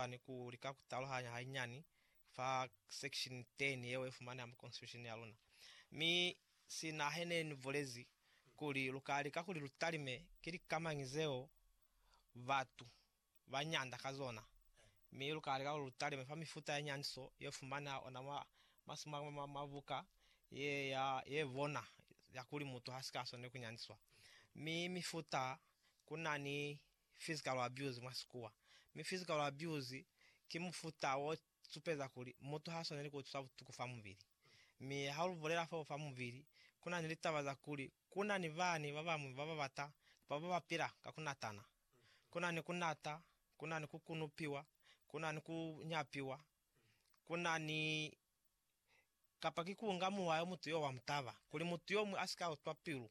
kani ku lika ku taluhanya hanyinyani fa section 10 yeo ifumaneha mu Constitution ya luna. Mi sina hene ni bulezi kuli lu ka lika kuli lu talime ki lika mañi zeo batu ba nyanda ka zona, mi lu ka lika kuli lu talime fa mifuta ya nyandiso ye fumaneha ona mwa masimu a mwa mabuka ye ya ye bona ya kuli mutu ha si ka swaneli ku nyandiswa. Mi mifuta ku na ni physical abuse mwa sikuwa, mi physical abuse ki mufuta wo supeza kuli mutu ha swaneli ku utwiswa butuku fa mubili. Mi ha lu bulela fo fa mubili, ku na ni litaba za kuli ku na ni bani ba bañwi ba ba bata kapa ba ba pila ka ku natana. Ku na ni ku nata, ku na ni ku kunupiwa, ku na ni ku nyapiwa, ku na ni kapa ki kuunga muwa yo mutu yo wa mutaba, kuli mutu yomuñwi asika utwa pilu,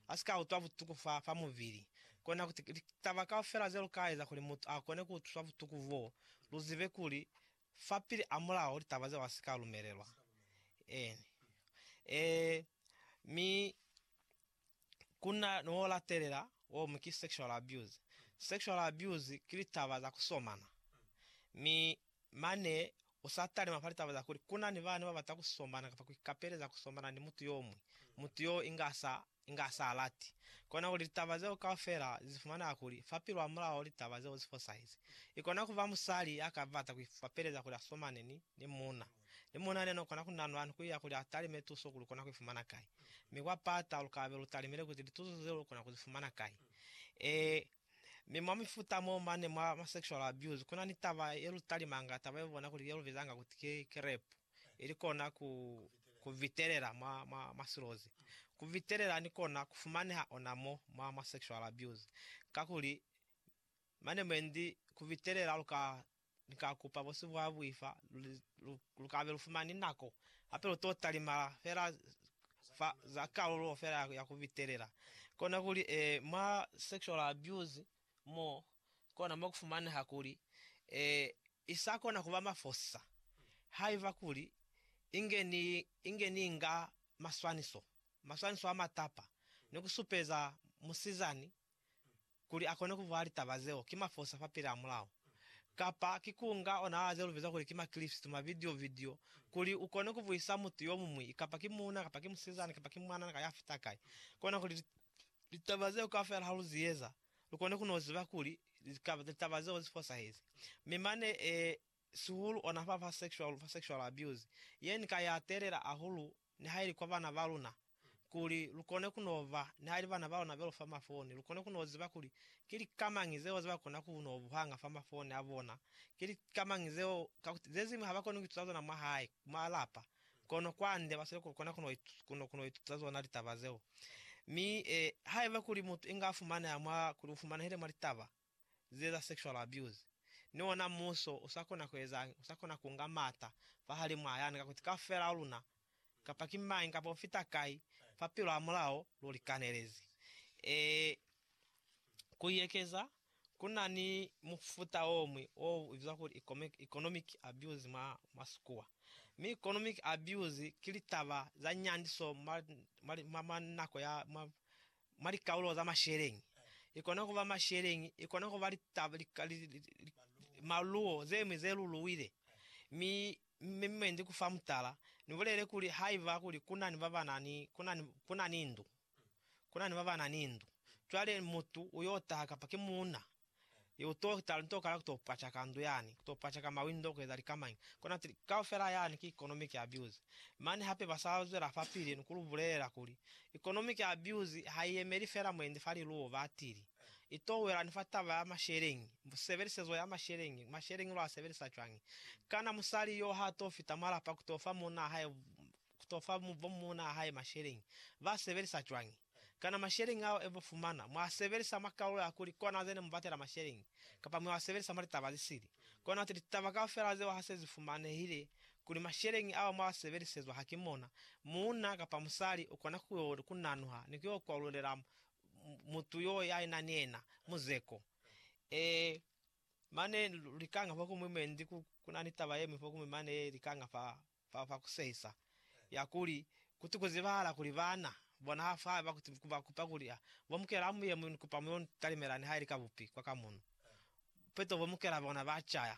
asika utwa butuku fa, fa mubili. Kona kuti litaba kaufela ze lu ka eza kuli mutu a kone kuutwiswa butuku boo, lu zibe kuli, fapili a mulao, litaba zeo asika lumelelwa. En. Ee, mi kuna ni wo latelela, wo mu ki sexual abuse. Sexual abuse ki litaba za kusomana. Mi Mane u sa talima fa litaba za kuli ku na ni bana ba bata ku sombana kapa ku ikapeleza ku sombana ni mutu yo muñwi, mutu yoo inga sa, inga sa lati. Kona kuli litaba zeo kaufela li zifumanela kuli fa pilu hamulaho litaba zeo zi fosahezi. I kona ku ba musali ya ka bata ku ikapeleza kuli a somane ni, ni muuna. Ni muuna yena no kona ku nanwa ni ku iya kuli a talime tuso kuli u kona ku i fumana kai. Mi kwa pata lu ka be lu talimile kuti lituso zeo lu kona ku zi fumana kai. Ee, Mi mwa mifuta mo mane mwa ma sexual abuse kuna ni taba ye lu talimanga, taba ye bona kuli ye lu bizanga kuti ki, ki rape, ili kona ku, ku vitelela mwa, mwa, mwa silozi. Ku vitelela ni kona ku fumaneha ona mo mwa ma sexual abuse, kakuli mane mwendi ku vitelela lu ka Ni ka kupa bosi bwa buifa lu kabe lu fumani nako, hape lu to talimala fela fa za kalulo fela ya ku bitelela. Kona kuli, e, mwa sexual abuse mo, kona mo ku fumaneha kuli, e, i sa kona kuba mafosisa haiba kuli inge ni, inge ni inga maswaniso, maswaniso a matapa, ni ku supeza musizani Kuli akone kubulela litaba zeo, ki mafosa fa pili amulaho, kapa ki kunga ona a ze lubiza kuli ki makilipsitu, mavidio, vidio, kuli ukone kubuisa mutu yomuñwi, kapa ki muuna, kapa ki musizana, kapa ki mwanana ka yafita kai, kona kuli litaba zeo kaufela ha lu zieza, lukone kuno ziba kuli litaba zeo zi fosahezi. Mi mane e, sihulu ona fa, fa sexual, fa sexual abuse, ye ni ka ya telela ahulu nihaili kwa bana ba luna, kuli lu kone ku no ba, nihaili bana ba luna be lu fa mafoni, lu kone ku no ziba kuli ki lika mañi zeo ze ba kona ku no buhanga fa mafoni a bona, ki lika mañi zeo, kakuti ze ziñwi ha ba koni ku ituta zona mwa hae, mwa lapa, kono kwande ba sile ku kona ku no ituta zona litaba zeo. Mi, eh, haiba kuli mutu inga a fumaneha mwa, kuli u fumanehile mwa litaba, zieza sexual abuse, ni ona muso usa kona kueza'ngi? Usa kona kunga mata fahalimu a yani, kakuti kaufela luna, kapa ki mañi kapa ufita kai, fa pilu hamulaho lu likanelezi. Ee, kuiekeza, kuna ni mufuta omuñwi o bizwa kuli economic abuse mwa Masikua. Mi economic abuse ki litaba za nyandiso mwa nako ya, mwa, mwa likaulo za masheleñi, ikona kuba masheleñi, ikona kuba litaba, li, li, li, li, maluo zemwi ze luluwile. Mi, mi mwe ndi kufa mutala, ni bulele kuli haiba kuli kunani babanani, kunani, kunani ndu, kunani babanani ndu, cwale mutu uyo taha kapa ki muuna, I u to hita linto kala ku to pacaka ndu yani, ku to pacaka mawindo, ku eza likamañi. Kona tili, kaufela yani ki economic abuse. Mane hape ba sa zwela fapili ni ku lu bulelela kuli, Economic abuse ha i yemeli fela mwendi fa liluwo. Ba tili, I to wela ni fa taba ya masheleñi, sebelisezo ya masheleñi, masheleñi lu a sebelisa cwañi. Kana musali yo ha to fita mwa lapa ku to fa munna hae ku to fa bo muuna hae masheleñi, ba sebelisa cwañi? Kana masheleñi ao e bo fumana mwa sebelisa mwa kalulo ya kuli kona ze ne mu batela masheleñi, kapa mwa sebelisa mwa litaba ze sili? Kona ti litaba kaufela zeo ha se zi fumanehile kuli masheleñi ao mwa sebelisezwa ha ki mona, muuna kapa musali u kona ku yo ku nanuha ni ku yo kwalulela mutu yo ya na ni yena muzeko. Ee, mane lika nga fa ku mwi mwendi ku na ni taba ye ñwi fa ku mwi mane ye lika nga fa fa fa ku sehisa, ya kuli, Kuti ku zibahala kuli baana bona ha fa ba kuti ku ba kupa kuli, a bo mukela amu ye mu ni kupa mu yo ntalimela ni ha ili ka bupi kwa ka muno. Peto bo mukela bona ba caya.